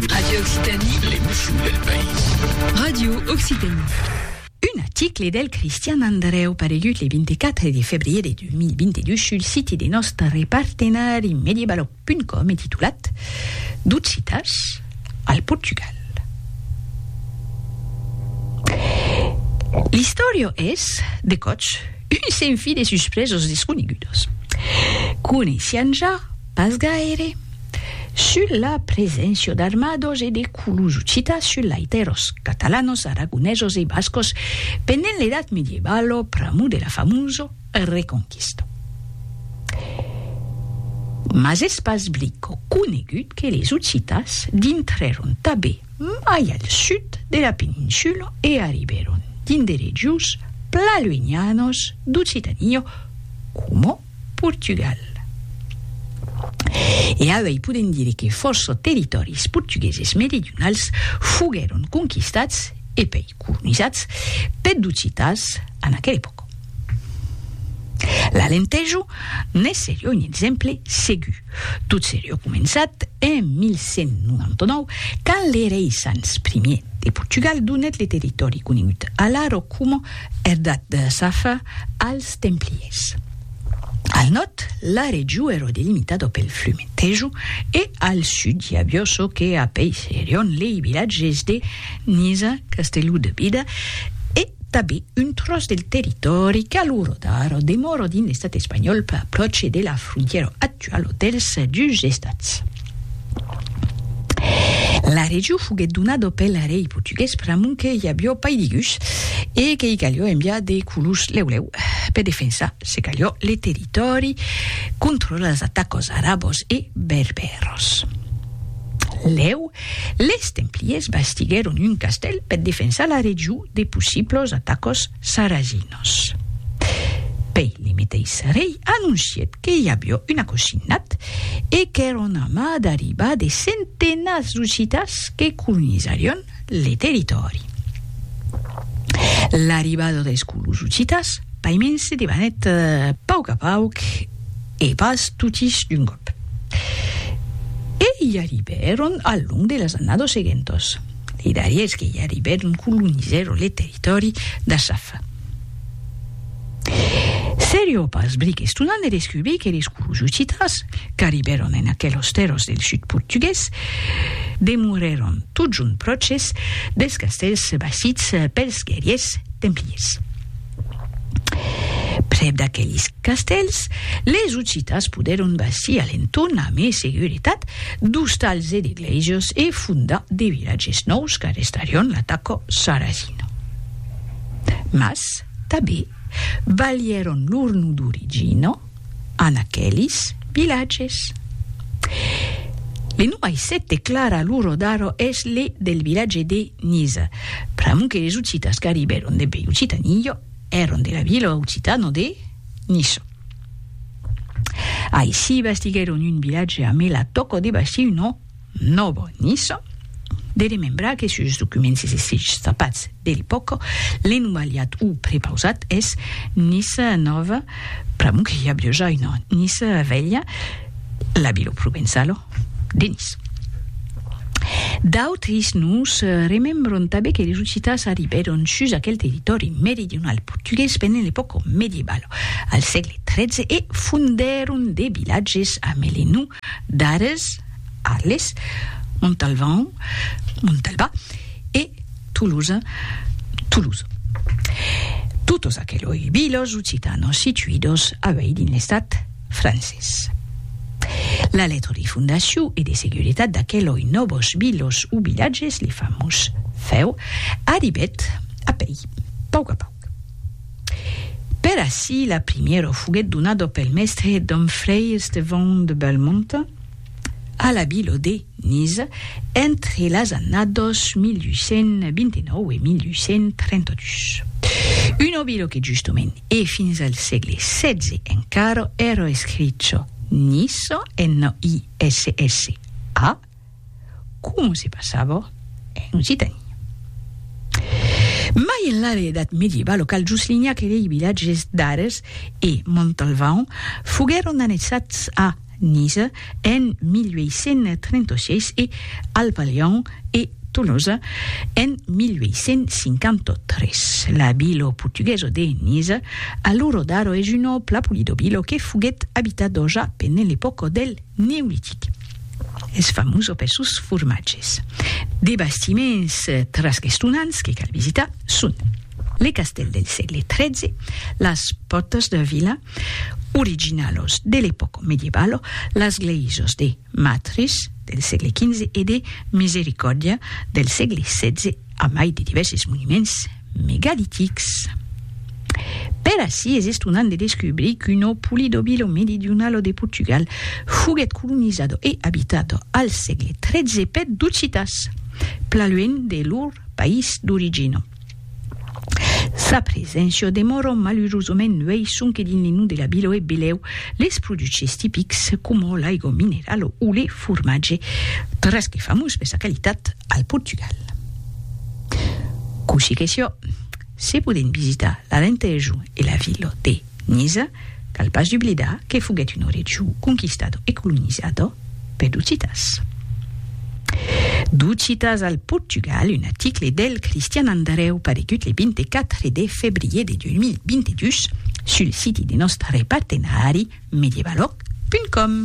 Radio Occitanie. L'emotion del país. Radio Occitanie. Un article del Cristian Andreu paregut le 24 de febrier de 2022 sul siti de nòstre partenari medievalo.com e titulat D'occitas al Portugal. L'istòria es, de còps, un senfi de suspresos desconegudos. Coneissián ja Pas gaire. Sul la preséncia d'armados e de colors occitans sul laiteros, catalanos, aragonesos e bascos pendent l'edat medievalo pr'amor de la famoso Reconquista. Mas es pas brico conegut que les occitans dintrèron tabé mai al sud de la peninsula e arribèron dins de regions pla luenhanos d'Occitania, coma Portugal. E auei podem dire que fòrça territòris portugueses meridionals foguèron conquistats e pei colonizats peth d'occitans en aquera epòca. L'Alentejo ne serie un exemple segur, tot serie començat en 1199 quand le rei Sanç Ier de Portugal donèt le territòri conegut alara coma Erdat de Safa als Templiers. Al nòrd, la region èra delimitada pel flum Tejo e al sud i aviá çò que apeisserián lei vilatges de Niza, Castelló de Bida e tanben un tròç del territòri qu'a l'ora d'ara demòra dins l'estat espanhòl pròche de la frontièra actuala dels dus estats. La region foguèt donada pel rei portugués pr'amont que i avió pairigus e que i calió enviar de colons lèu-lèu per defensar, se calió, le territòri contra las atacas arabas e berbèras. Lèu, les templiers bastiguèron un castèl per defensar la region de possiblas atacas Saraginos. Pei limitei Sarei anoncièt que i avió un acosinat e qu'èra un amas d'arribar de centenats d'occitans que colonizarion le territòri. L'arribada deis colons occitans paiments se debanèt pauc a pauc e pas totis d'un còp. E i arribèron al long de las annados seguentas. Li darriers que i arribèron colonizèron le territòri d'Asaf. Serio pas bric estonant de descubrir que les colons occitans, qu'arribèron en aquelos tèrras del sud portugués, demorèron totjorn pròches dels castèls bastits pels guerriers templiers. Prèp d'aquelis castèls, les Occitas podèron bastir a l'entorn a mai seguretat d'ostals e de glèises e fondar de vilatges nòus qu'arrestarion l'ataca sarrasina. Mas, tanben, balhèron lor nom d'origina. en aquelis vilatges. Le nom aisset de Clara Luro d'Aro es le del vilatge de Niza, pr'amor que les occitas qu'arribèron dembe Occitanillo èron de la vila occitana de Niso. Aissiba estiguèron un vilatge amé la tòca de bastir un nom Novo Niso, de remembrar que sus documents es escrichs tapats de l'epòca, l'enumaliat o prepausat es Nisa Nova, pr'amor que i a biuja una Nisa Velha, la vila provençala de Nice. D'autres nos remembran tanben que los occitans arribèron sus aquel territòri meridional portugués pendent l'epòca medievala, al sègle XIII, e fondèron de vilatges amé le nom d'Ares, Arles, Montalvan, Montalbà, e Tolosa, Toulouse. Totes aqueloi viles occitanes situides a uèi dins l'estat francés. La letra de fondacion e de seguretat d'aqueloi nòves viles o vilatges, li famós fèu, arribèt a pèi, pauc a pauc. Per ací la primièra foguèt donada pel mèstre dom Frei Estevão de Belmonte a la vila de Niza entre las annadas 1829 e 1832. Una vila que justament e fins al sègle xvi encara èra escricha Nissa, N-I-S-S-A, com se passava en Occitània. Mai enlà de l'edat medieval, lo Cal Juslinhac e lei vilatges d'Ares e Montalvan foguèron annexats a Niza en 1836 e al Palhon e Tolosa en 1853. La vila portuguesa de Niza, a l'ora d'ara es una plapolidobila que foguèt abitada ja pendent l'epòca del Neolitic. Es famós per sos formatges. De bastiments trasquestonants que cal visitar son le castèl del sègle XIII, las pòrtas de vila, originalos de l'epòca medievalo, las glèisas de Matris, del sègle XV, e de Misericòrdia, del sègle XVI. a mai de divèrses monuments megalitics. Per ací es estonant de descubrir que lo Polidobilo Meridionalo de Portugal foguèt colonizado e abitado al sègle XIII per d'occitans, plan luènh de lor país d'origina. Sa preséncia demòra malurosament luèi sonque dins le nom de la vila e belèu les produches tipics coma l'aigua minerala o le formatge, tras que famós per sa qualitat, al Portugal. Cossí que sió, se podent visitar l'Alentejo e la vila de Niza, cal pas dublidar que foguèt un oregiu conquistado e colonizado per d'occitans. D'occitans al Portugal, un article del Cristian Andareu paregut le 24 de febrier de 2022 sul siti de nòstre partenari medievaloc.com.